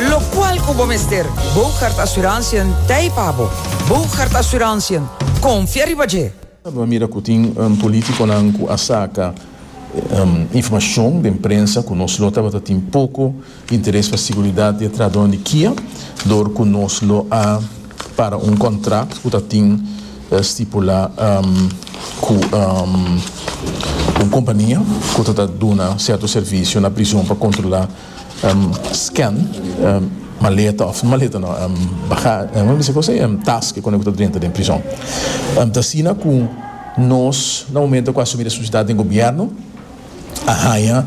Locual cu bo mester Bogaert Assurantiën t'ey pa bo. Bogaert Assurantiën, confia riba dje! Bo a mira cu tin politiconan cu a saca informacion den prensa cu nos lo tabata tin poco interes pa siguridad di e trahadornan di Kia dor cu nos lo a para un contract cu ta tin stipula cu un compania cu ta ta duna cierto servicio na prison pa controla scan, maleta of maleta no baga kome ta bisti kosé taske kone ku ta drenta den prizon ta asina ku nos na momento ku asumi responsabilidat den gobierno a haña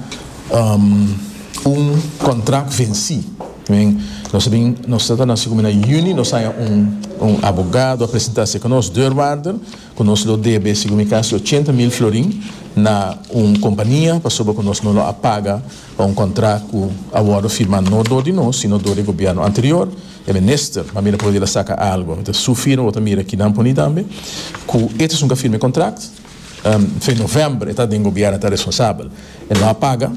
un kontrak vensi den nos ta bin nos ta na sigu mi na juni nos haña un abogado a presenta se ku nos deurwaarder ku nos lo debe sigu mi kasi ochenta mil florin na un kompania pasobra ku nos no lo a paga. Pa un kontrá ku a wòrdu firmá no dor di nos, sino dor di e gobièrnu anterior, e minister mami ta pudi la saka algu. E ta su firma bo ta mira aki nan poni tambe ku e ta sunka firma e kontrakt. Fe novèmber e ta den gobièrnu e ta responsabel. E no a paga,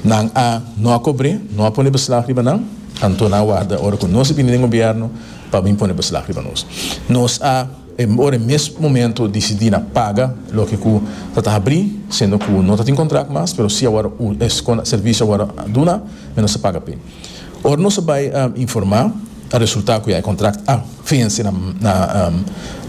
nan a no a kobr'é, no a pone beslag riba nan, anto nan a warda ora ku nos a bini den gobièrnu pa bin pone beslag riba nos. Nos a. E por e mes momento dicidi na paga loke cu ta ta habri, siendo cu no ta tin contract mas, pero si awor e servicio awor a duna, mi nos a paga p'e. Ora nos a bay a informa, a resulta cu ya e contract a venci na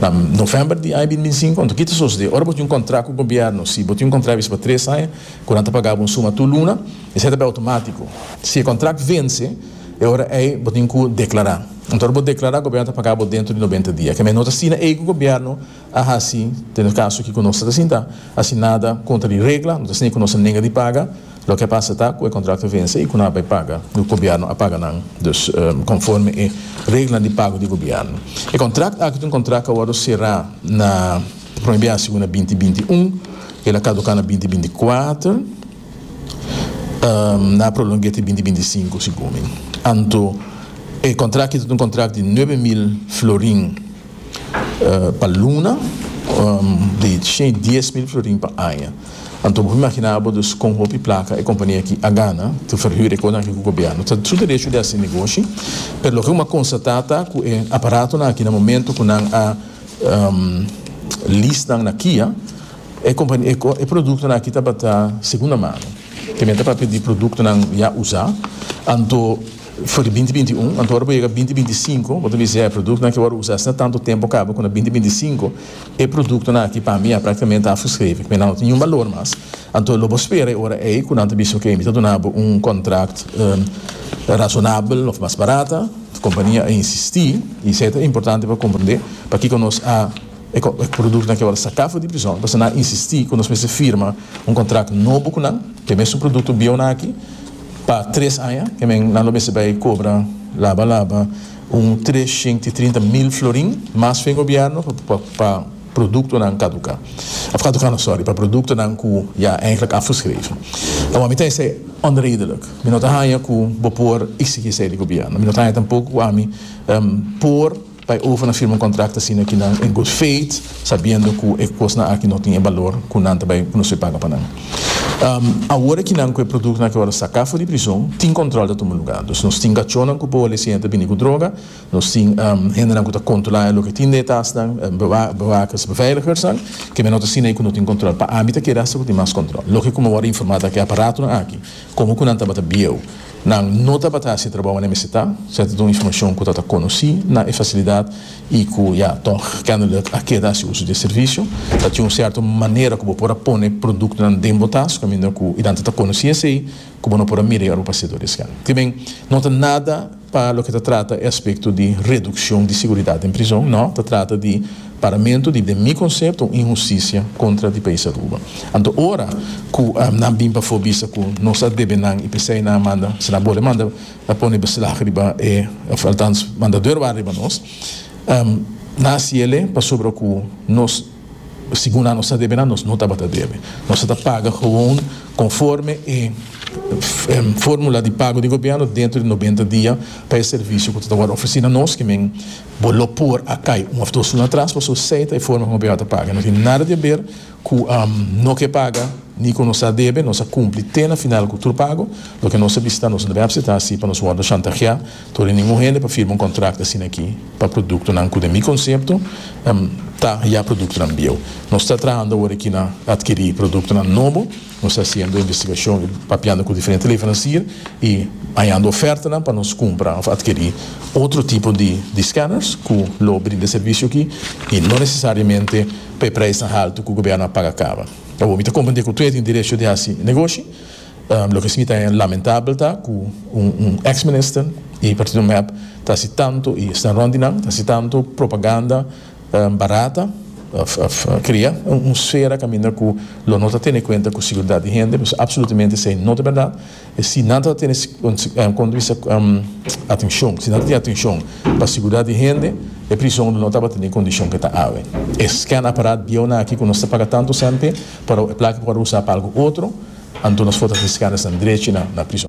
na november di aña bin binsinco. Enton kita sosode? Ora bo tin un contract cu gobierno, si bo tin un contract bisti pa tres aña cu nan ta paga bo un suma tur luna, esey ta bay automatico. Si e contract venci, E ora ei bo tin cu declara. Anto bo declara gobierno ta paga bo dentro di noventa dia. Kemey no ta asina ei cu gobierno a haci den caso aki cu nos ta sinta haci nada contra di regla, no ta asina cu nos a nega di paga. Loke a pasa ta cu e contracto a vense y cu nan a bay paga y gobierno a paga nan dus conforme e reglanan di pago di gobierno. E contract aki ta un contract cu a wordo cera na prome biaha segun na binti binti un y el a caduca na binti binti cuater. na prolong'é ti binti binti sinku, segun mi. Anto e kontrakt aki ta un kontrakt di nuebe mil florin pa luna di shei dies mil florin pa aña. Anto bo imaginá bo dus kon hopi plaka e kompania aki a gana ta ferhür e kosnan aki ku gobièrnu. Ta su derecho di hasi negoshi, pero loke bo m'a konstatá ta ku e aparatonan aki na momento ku nan a list nan na Kia, E produktonan aki tabata segunda mano, tambe ta papia di produktonan ya usá, anto for di binti binti un, anto ora bo yega binti binti sinku bo ta bisa e produktonan ke wòrdu usá esei na tantu tempu kaba ku na binti binti sinku, e produktonan aki pa mi ya praktikamente ta afgeschreven, nan no tin niun balor mas, anto lo bo spera e ora ei ku nan ta bisa oke mi ta duna bo un kontrakt rasonabel òf mas barata, kompania a insistí i esei ta importante pa komprendé pakiko nos a. E productonan ke awor saka for di prison pasobra nan a insisti ku nos mester firma un kontrakt nobo ku nan, ke mesun produkto bieunan aki, pa tres aña, ke men nan lo mester bai kobra laba laba un treshent i trinta mil florin mas fen gobièrnu pa produktonan kaduká, òf kaduká no, sòri, pa produktonan ku ya eindelijk afgeschreven. Awor mi ta esei onredelijk. Mi no ta haña ku bo por iksigí esei di gobièrnu. Mi no ta haña tampoco ku ami por. Pa e overnan firma un contract asina aki nan en good faith sabiendo cu e cosnan aki no tin e balor cu nan ta bay pronosey paga pa nan. Awor aki nan cu e productonan aki awor a saca for di prison tin control ta tuma lugar. Dus nos tin cachonan cu boa lesiña ta bini cu droga, nos tin hendenan cu ta controla loke tin den e tasnan, bewakers, beveiligersnan, kemey no ta asina cu no tin control. Pa ami ta kere hasta cu tin mas control. Loke cu mi awor a informa ta cu e aparatonan aki como cu nan tabata bieu Nan no tabata hasi trabou ane mester ta, se a ta duna informacion cu ta ta conoci na e facilidad y cu ya tog kennelijk a keda haci uso di e servicio. Ta tin un cierto manera cu bo por a pone productonan den bo tas, caminda cu y nan ta ta conoci esey cu bo no por a mira y ora bo pasea door di esken. Kiben, no ta nada pa loke ta trata e aspecto di reduccion di seguridad den prizon, no, ta trata di. Paramentu di den mi konsepto un inhustisia kontra di País Aruba. Anto ora ku nan bin pafó bisa ku nos a debe nan i p'esei nan a manda si nan bole manda a pone beslag riba e òf altans manda dor wak riba nos nan a siele pasobra ku nos segun nan nos a debe nan nos no tabata debe nos a ta paga gewoon konforme e fórmula di pago di gobièrnu dentro di nobenta dia pa e servisio ku ta wòrdu ofresí na nos kimen Bo lo por a kai un of dos luna tras paso sei ta e forma ku Abiatar ta paga. No tin nada di haber ku no ke paga ni ku nos a debe. Nos a kumpli te na final ku tur pago. Loke nos a bisa ta nos no debe apseta asi pa nos wòrdu shantaheá tur di ningun hende pa firma un kontrakto asin'akí pa produktonan ku den mi konsepto ta ya produktonan bieu. Nos ta traha unda wòrdu aki na atkirí produktonan nobo. Nos ta hasiendo investigashon i papiando ku diferente leveransier i hañando ofertanan pa nos kumpra òf atkirí otro tipo di di skanners ku lo brinda e servisio akí i no nesesariamente pa e preisnan haltu ku gobiernu a paga kaba. Awor mi ta komprendé ku tur a tin derecho di hasi negoshi. Loke si mi ta haña lamentabel ta ku un un ex minister i partido mep ta hasi tantu i esnan rònt di nan ta hasi tantu propaganda, Barata, Cria un sfera caminda cu lo no ta tene cuenta cu seguridad di hende, pues absolutamente esey no ta berdad. Si nan ta tene punto di vista atencion, si nan ta tin atencion pa seguridad di hende e prison lo no tabata na e condicion cu e ta awe. E scan apparat bieunan aki cu nos ta paga tanto cente pero e placa por word usa pa algo otro, anto nos for ta tin scan esnan drechi na prison.